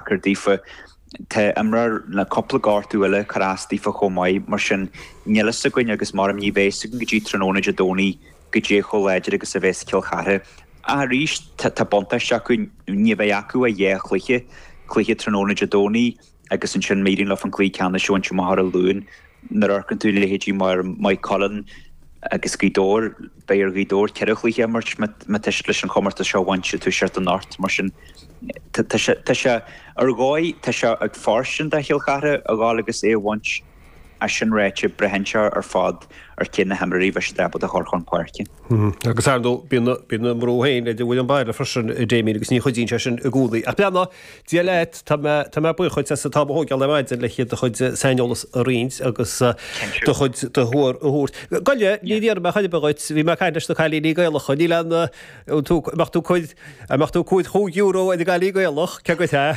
cur daofa. Tá imreoir le cúpla gortú eile ag cur as daofa chomh maith, mar sin níl fhios againn agus mar a deirim ní bheidh fhios againn go dtí tráthnóna Dé Domhnaigh goidé chomh láidir agus a bheas Cill Chartha. Ach arís tá buntáiste acu, ní bheidh acu ach dhá chluiche, cluiche tráthnóna Dé Domhnaigh agus ansin má éiríonn leo an cluiche ceannais a bhaint amach ar an Luan. Nuair a amharcann tú leithéidí mar Maigh Cuilinn agus Gaoth Dobhair, beidh ar Ghaoth Dobhair ceithre chluiche a imirt má tá siad leis an chomórtas seo a bhaint ag toiseacht anocht. Mar sin tá sé ar dhóigh, tá sé ag fóirstean do Chill Chartha a dhul agus é a bhaint. Ach sin ráite, braitheann sé ar fad ar cé na himreoirí a bheas siad ábalta a chur chun páirce. Agus ar ndóigh, bíonn na mná féin, idir bhfuil an baile freisin, Damien, agus ní chuidíonn sé sin i gcónaí. Ach beannacht. Dé leat, tá mé tá mé buíoch duit as an t-am a thógáil ar maidin le do chuid saineolas a roinnt agus do chuid de thuar a thabhairt. Goile, ní dhéanfaidh mé chuile dhuit, bhí mé ag caint leis na cailíní Gaelacha, níl an an tú an mbeadh tú cuid an mbeadh tú cúid chúig euro ar an gCailín Gaelach, cé go hea?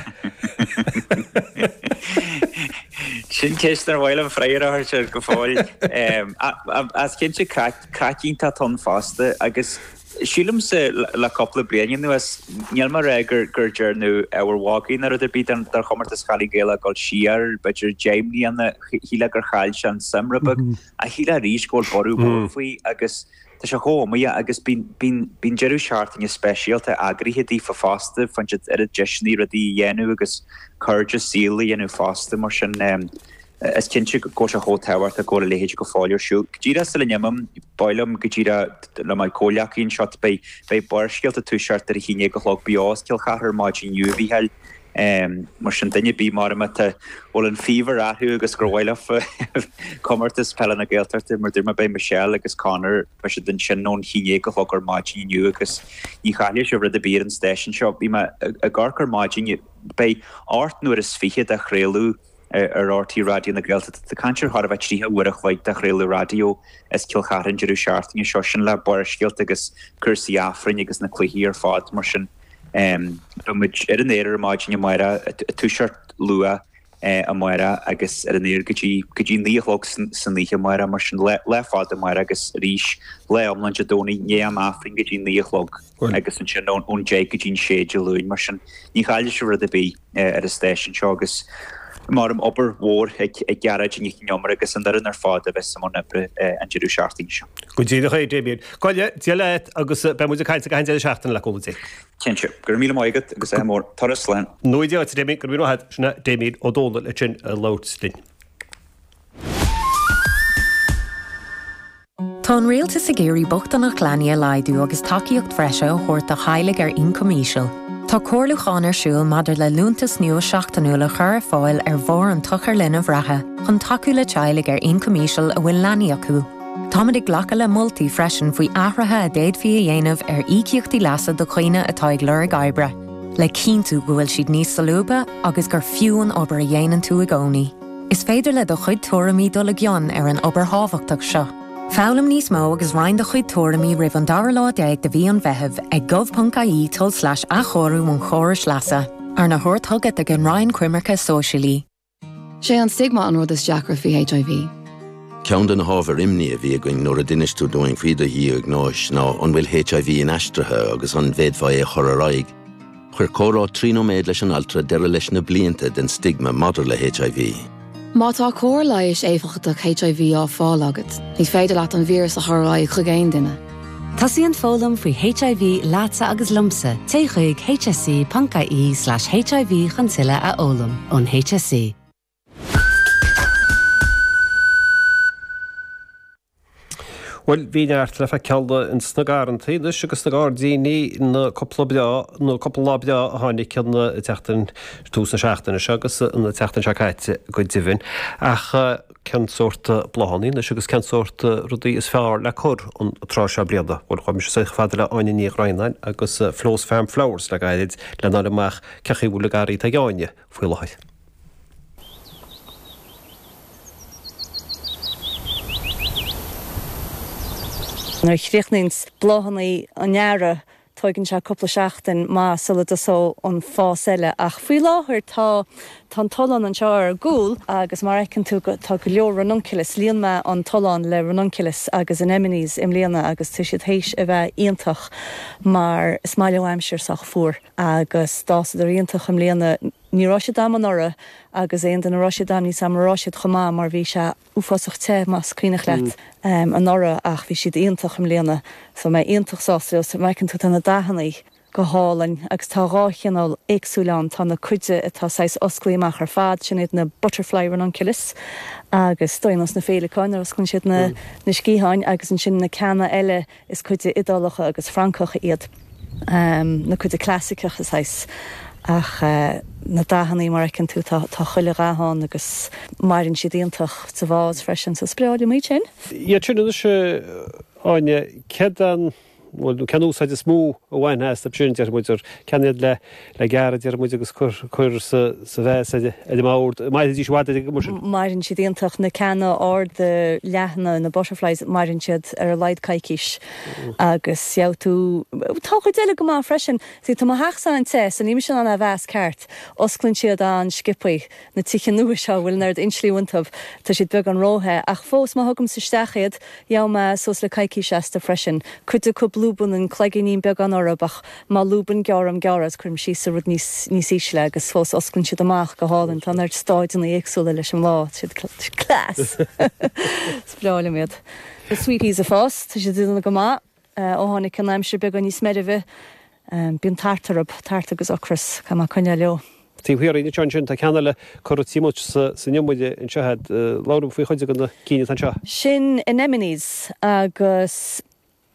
Sin ceist nach bhfuil an freagra air sin go fóill ach cinnte craic iontach atá ann fosta agus Sílimse le cúpla bliain anuas níl mé ag rá gur dearnadh ábhar mhagaidh ná rud ar bith den chomórtas Cailín Gaelach ag dul siar b'fhéidir deich mbliana, shílfeá gur chaill sé an suim rud beag ach shílfeá arís go bhfuil borradh mór faoi agus tá sé chomh iomaíoch agus bíonn deireadh seachtaine speisialta eagraithe daofa fosta, faigheann siad oiread deiseanna rudaí a dhéanamh agus cairde saoil a dhéanamh fosta mar sin. Is cinnte go bhfuil sé chomh tábhachtach go bhfuil a leithéid go fóill ar siúl. Go díreach sula n-imím, ba mhaith liom go díreach le mo chomhghleacaí anseo, beidh Barrscéalta ag toiseacht ar a haon déag a chlog beo as Cill Charthaigh ar maidin inniu, a Mhícheáil. Mar sin, duine ar bith, mura mbeidh tú, bhfuil an faobhar orthu agus gur mhaith leo Comórtas Peile na Gaeltachta, mar dúirt mé, beidh Michelle agus Conor, beidh siad ansin ón haon dhéag a chlog ar maidin inniu agus ní chaillfidh sibh rud ar bith ar an stáisiún seo. Bhí mé ag amharc ar maidin, beidh ocht n-uaire is fiche de chraoladh, ar RTÉ Raidió na Gaeltachta. Tá caint ar chóir a bheith tríocha uair a chloig de chraoladh raidió as Cill Charthaigh an deireadh seachtaine seo. Sin le Barrscéalta agus cúrsaí Aifrinn agus na cluichí ar fad mar sin. Beidh muid ar an aer ar maidin amárach, ag toiseacht luath amárach agus ar an aer go dtí go dtí naoi a chlog san oíche amárach mar sin. Lá fada amárach agus arís lá iomlán Dé Domhnaigh, i ndiaidh an Aifrinn go dtí naoi a chlog. Bhuel. agus ansin ón deich go dtí'n sé Dé Luain, mar sin ní chaillfidh sibh rud ar bith ar an stáisiún seo agus mar a deirim obair mhór ag Gearóidín Nic an Iomaire agus an fhoireann ar fad a bheas i mbun oibre an deireadh seachtaine seo. Go díreach é, Damien. Goile, Dia leat agus beidh muid ag caint ag an deireadh seachtaine le cúnamh Dé. Cinnte. Go raibh míle maith agat agus ádh mór. Turas slán. Nó a Dhia, a Damien, go raibh míle maith agat. Sin é Damien Ó Dónaill ansin ag labhairt linn. Tá an Rialtas ag iarraidh bochtaineacht leanaí a laghdú agus tacaíocht bhreise a thabhairt do theaghlaigh ar ioncam íseal. Tá comhairliúchán ar siúl maidir le liúntas nua seachtainiúil a chur ar fáil ar bharr an tsochair linbh reatha chun tacú le teaghlaigh ar ioncam íseal a bhfuil leanaí acu. Táimid ag glacadh le moltaí freisin faoi athruithe a d'fhéadfaí a dhéanamh ar íocaíochtaí leasa do dhaoine atá ag lorg oibre, le cinntiú go bhfuil siad níos solúbtha agus gur fiú í an obair a dhéanann tú i gcónaí. Is féidir le do chuid tuairimí dul i gcion ar an obair thábhachtach seo. Foghlaim níos mó agus roinn do chuid tuairimí roimh an dara lá déag de mhí an Mheithimh ag gov.ie tulslais athchóiriú an chórais leasa, arna thabhairt chugat ag an Roinn Coimirce Sóisialaí. Sé an stigma an rud is deacra faoi HIV. Ceann de na hábhair imní a bhí againn nuair a d'inis tú dúinn faoi do dhiagnóis ná an bhfuil HIV inaistrithe agus an bhféadfá é a chur ar aghaidh. Chuir comhrá trí nóiméad leis an altra deireadh leis na blianta den stigma maidir le HIV. Má tá cóir leighis éifeachtach HIV á fáil agat, ní féidir leat an víreas a chur ar aghaidh chuig aon duine. Tosaíonn foghlaim faoi HIV leatsa agus liomsa, téigh chuig hse.ie/hiv chun tuilleadh a fhoghlaim ón HSE. Bhuel, bhí neart le faid ceall insna garrantaí anois agus sna gairdíní na cúpla breá, nó cúpla lá breá a tháinig an tseachtain, tús na seachtaine seo agus an tseachtain seo caite go deimhin. Ach cén sórt bláthanna anois agus cén sórt rudaí is fearr le cur an tráth seo bliana? Bhuel, chuir mise scathamh fada le Áine Ní Dhroighneáin as Flo's Farm Flowers le gairid le n-fháil amach cé chaoi a bhfuil an garraí ag Áine faoi láthair. Nuair a chríochnaíonns bláthanna an Earraigh tóigeann sé cúpla seachtain maith sula dtosóidh an fás eile ach faoi láthair tá an tollán anseo ar ar gcúl agus mar a fheiceann tú tá go leor ranunculus, líon mé an tollán le ranunculus agus anemones i mbliana agus tá siad théis a bheith iontach mar is maith leo aimsir sách fuar. Agus d'fhásadar iontach i mbliana. Ní raibh siad am anuraidh agus aon bhliain a raibh siad am ní dóigh liom go raibh siad chomh maith mar bhí sé uafásach te, más cuimhneach leat, anuraidh ach bhí siad iontach i mbliana. So tá mé iontach sásta leo. An bhfeiceann tú tá na dathannaí go hálainn agus tá dhá chineál éagsúil ann. Tá na cuid de atá saghas osclaí amach ar fad, sin iad na butterfly ranunculus agus ar nós na féileacáin nuair a osclann siad na sciatháin agus ansin na ceanna eile, Is cuid de Iodálacha agus Francacha iad na cuid clasaiceacha saghas, ach na dathannaí, mar a fheiceann tú, tá chuile dhath ann agus maireann siad iontach sa vás freisin, so is breá liom iad sin. Iad sin anois, Áine, céard an, bhuel, cén úsáid is mó a bhainfeá as na plandaí? B'fhéidir ceann iad le. le gairid ar ndóigh agus cur sa vás ar an mbord. Mairfidís i bhfad ar an gcuma sin. Maireann siad iontach, na ceanna arda leathana, na butterflies, maireann siad ar a laghad coicís agus gheobhaidh tú, tá an chuid eile go maith freisin. Sea, tá mo theachsa an-te so níl mise in ann a mheas ceart. Osclann siad an-sciobtha, na tithe nua seo a bhfuil an oiread insulation iontu, tá siad beagán ró-the, ach fós má thugaimse isteach iad gheobhaidh mé suas le coicís astu freisin. Cuid acu blue bunting, cloigíní beaga orthu ach. Má lúbann gearraim go réidh is, cuirim síos ar rud níos ísle agus fós osclann siad amach go hálainn. Tá an oiread stáideanna éagsúla leis an mbláth. Tá siad class! Is breá liom iad. Na Sweeties ag fás. Tá siad ag déanamh go maith ó tháinig an aimsir beagán níos meirbhe. Bíonn tart orthu, tart agus ocras. Caithfidh mé coinneáil leo. Taobh thiar de sin ansin tá ceann eile curtha sa Niomaire anseo a'd. Labhraím faoi chuid de na cineál atá anseo. Sin Anemones agus.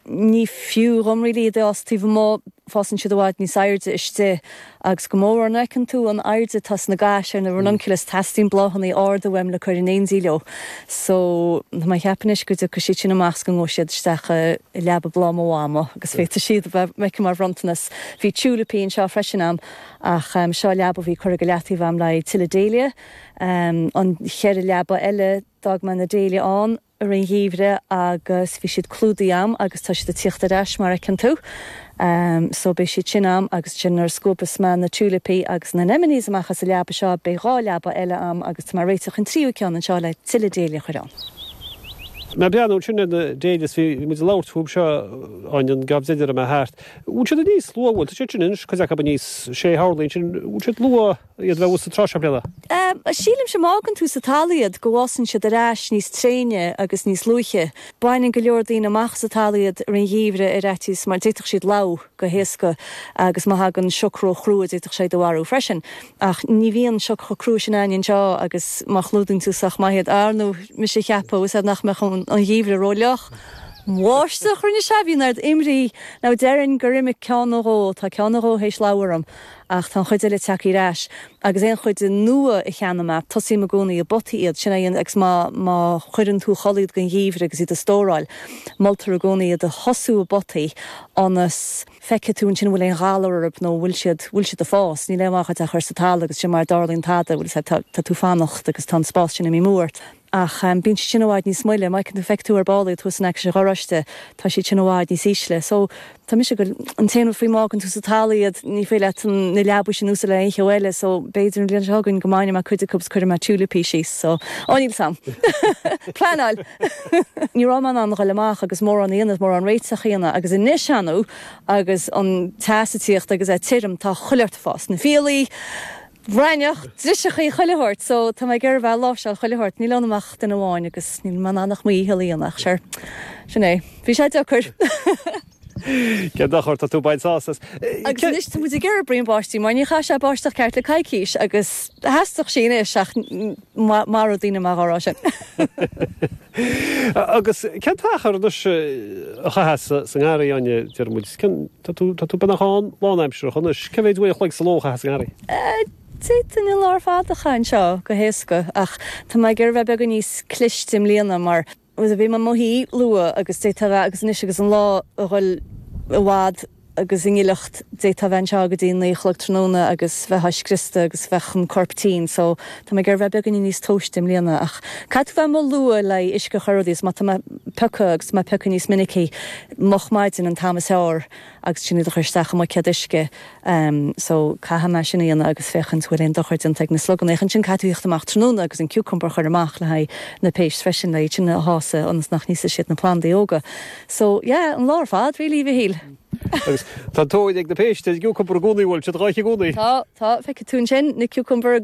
Ní fiú dhom really iad a fhás taobh amuigh, fásann siad i bhfad níos airde istigh agus go mór an fheiceann tú an airde atá sna gais ar na ranunculus teastaíonn bláthannaí arda uaim le cur in éindí leo so tá mé a cheapadh anois go dtiocfaidh siad sin amach is go ngabhaidh siad isteach i leaba bhláth mo mhamó agus féadfaidh siad a bheith aici mar bhronntanas. Bhí tiúilipí anseo freisin a'm ach seo leaba a bhí curtha go leataobh a'm le haghaidh tuilleadh Dahlia, an cheithre leaba eile d'fhág mé na Dahlia ann. ar an gheimhreadh agus bhí siad clúdaithe a'm agus tá siad ag tíocht ar ais mar fheiceann tú. So beidh siad sin a'm agus ansin nuair a scuabas mé na tulipaí agus na anemones amach as an leaba seo beidh dhá leaba eile a'm agus tá mé réiteach an tríú ceann anseo le tuilleadh dahlia a chur ann. Mar a deineadh ansin ar na dahlias bhí muid ag labhairt fúb seo an Aoine ghabh deiridh a raibh mé thart. Bhfuil siad níos luath tá siad sin anois cuid acu aníos sé horlaí ansin bhfuil siad luath? iad a bheith fút an tráth seo bliain? Sílim sé má fhágann tú sa talamh iad go bhfásann siad ar ais níos tréine agus níos luaithe. Baineann go leor daoine amach as an talamh iad ar an gheimhreadh ar fhaitíos mar d'fhéadfadh siad lobhadh go héasca agus má thagann sioc ró chrua d'fhéadfadh sé iad a mharú freisin. Ach ní bhíonn sioc chomh crua sin ann anseo agus má chlúdaíonn tú sách maith iad, ar ndóigh bhí mise a cheapadh nach mbeadh an geimhreadh ró fhliuch. Bháisteach rinne sé, bhí an oiread imní orm ach dearfainn gur imigh ceann nó dhó, tá ceann nó dhó théis lobhadh orm. ach tá an chuid eile ag teacht ar ais agus aon chuid nua a cheannaím, tosaím i gcónaí i bpotaí iad, sin é an, agus má, má chuireann tú a chodladh iad don gheimhreadh agus iad a stóráil, moltar i gcónaí iad a thosú i bpotaí ionas go bhfeicfidh tú ansin an bhfuil aon ghalar orthu nó an bhfuil siad, an bhfuil siad ag gabháil a fás, níl aon mhaith dhuit iad a chur sa talamh agus ansin mara dtarlaíonn tada, bhuel, is ea, tá, tá tú ag fanacht agus tá an spás sin imithe uait. Ach bíonn siad sin i bhfad níos moille. Mar a fheicfeas tú ar ball iad thuas in aice an gharáiste, tá siad sin i bhfad níos ísle. So, tá mise go, an t-aon rud faoi má fhágann tú sa talamh iad, ní féidir leat an, na leabaidh sin a úsáid le aon cheo eile. So, b'fhéidir an bhliain seo chugainn go mbainfidh mé cuid acub 's cuirfidh mé tiúilipí síos. So, á níl 's am. Pleanáil! Ní raibh mé in ann a ghoil amach agus mórán a dhéanamh, mórán réiteach a dhéanamh. Agus anois ar ndóigh agus an teas ag tíocht agus é tirim, tá chuile, fás na fiailí, raithneach, driseachaí chuile shórt so tá mé ag iarraidh bheith ag láimhseáil chuile shórt. Níl ionam ach duine amháin agus níl mé in ann ach mo dhícheall a dhéanamh ach sure, sin é. Bhí sé deacair! Cén dochar, tá tú ag baint sásamh as. Agus anois tá muid ag iarraidh braon báistí mar ní chaith sé báisteach ceart le coicís agus theastódh sí anois ach. Maróidh daoine mé á rá sin. Agus cén t-achar anois a chaitheas tú sa ngarraí, a Áine, deir muid? Cén, tá tú beagnach ann lánaimsearach anois, cé mhéad uair an chloig sa ló a chaitheas sa ngarraí? D'fhéadfá an lá ar fad a chaitheamh anseo go héasca, ach tá mé ag iarraidh a bheith beagán níos cliste i mbliana mar, bhí mé i mo shuí luath agus d'fhéadfá a bheith agus anois agus an lá ag dul i bhfad agus i ngileacht d'fhéadfá a bheith anseo go dtí naoi a chlog tráthnóna agus bheifeá scriosta agus bheadh an corp tinn so tá mé ag iarraidh a bheith beagáinín níos tomhaiste i mbliana ach caithfidh tú a bheith amuigh luath le haghaidh uisce a chur ar rudaí agus má tá mé ag piocadh agus tá mé ag piocadh níos minicí moch ar maidin an t-am is fearr. agus ansin iad a chur isteach i mbuicéad uisce so caithfidh mé sin a dhéanamh agus féachaint bhfuil aon dochar déanta ag na sluganna ach ansin caithfidh tú tíocht amach tráthnóna agus an cucumber a chur amach le haghaidh na péist freisin le iad sin a shásamh ionas nach n-íosfaidh siad na plandaí óga so yeah an lá ar fad really a Mhichíl. Agus tá an-tóir ag na péist ar an gcucumber i gcónaí bhfuil siad dhá ithe i gcónaí? Tá, tá, feicfidh tú ansin na cucumber agus.